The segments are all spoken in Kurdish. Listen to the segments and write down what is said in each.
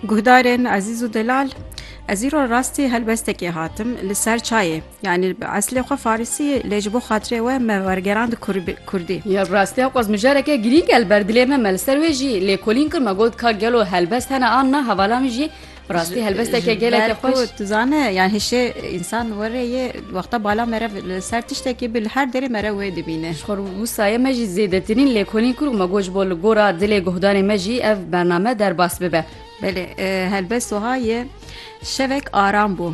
Guhdarên ezîz û delal Ez îro rastî helbestekê hatim li ser çayê yanî bi eslê xwe farisî lê ji bo xatirê we me wergerand kurdî. Ya bi rastiya qwez mijareke girîng el ber dilê me me li ser wê jî lêkolîn kir me got ka gelo helbest hene an na hevala min jî Bi rastî helbesteke geleke xweş. Tu zane yan hişê însan were yê wexta bala mere li ser tiştekî bi li her derê mere wê dibîne. Ji xwe wisa ye me jî zêdetirîn lêkolîn kur û me got ji bo li gora dilê guhdarên me jî ev bername derbas bibe. Belê helbest wiha ye şevek aram bû.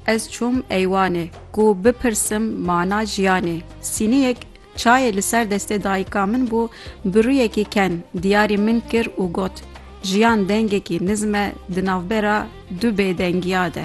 Ez çûm eywanê ku bipirsim mana jiyanê. Sîniyek Çayê li ser destê dayika min bû bi rûyekî ken diyarî min kir û got, Jiyan dengekî nizm e di navbera du bêdengiya de.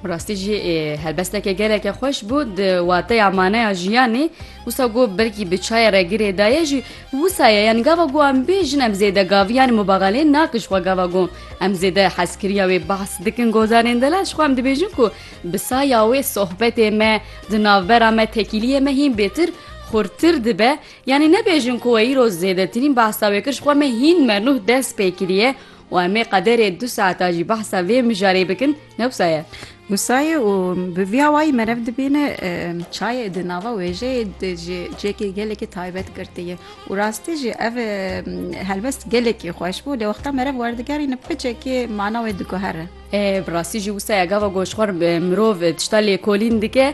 Bi rastî jî helbesteke geleke xweş bû di wateya maneya jiyanê. Wisa ku belkî bi çayê re girê daye jî wisa ye yanî gava ku em bêjin em zêde gavî yanî mubaxaleyê nakin ji xwe gava ku em zêde hezkiriya wê behs dikin gozanên delal ji xwe em dibêjin ku Bi saya wê sohbetê me di navbera me tekîliyê me hîn bêtir xurtir dibe, yanî nebêjin ku we îro zêdetirîn behsa wê kir ji xwe me hîn menuh dest pê kiriye û em ê qederê du saeta jî behsa vê mijarê bikin ne wisa ye. Wisa ye û bi vî awayî merev dibîne çayê di nava wêjeyê de jî cêkê gelekî taybet girtiye û rastî jî ev helbest gelekî xweş bû lê wexta merev werdigerîne piçekî mana wê diguhere. Bi rastî jî wisa ye gava ku ji xwe re mirov tişta lêkolîn dike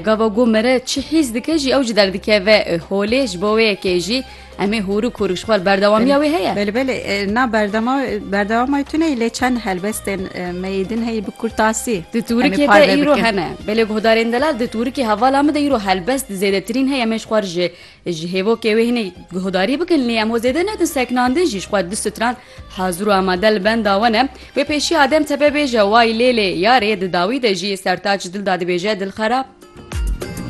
gava ku me re çi hîs dike jî ew jî derdikeve holê ji bo wê yekê jî em ê hûrik hûrik ji xwe berdewamiya wê heye. Belê belê na berdema berdewama tu neyî lê çend helbestên me yê din heyî bi kurtasî. Di Turikê de îro hene belê guhdarên delal di Turikê hevala min de îro helbest zêdetirîn heye em ê ji xwe re ji Ji hêvokê wê hinek guhdarî bikin lê em we zêde nedin seknandin jî ji xwe du stran hazir û amade li benda we ne. Wê pêşî Adem Tepe bêje way lê lê yarê di dawî de jî Sertaç Dilda dibêje dilxerab.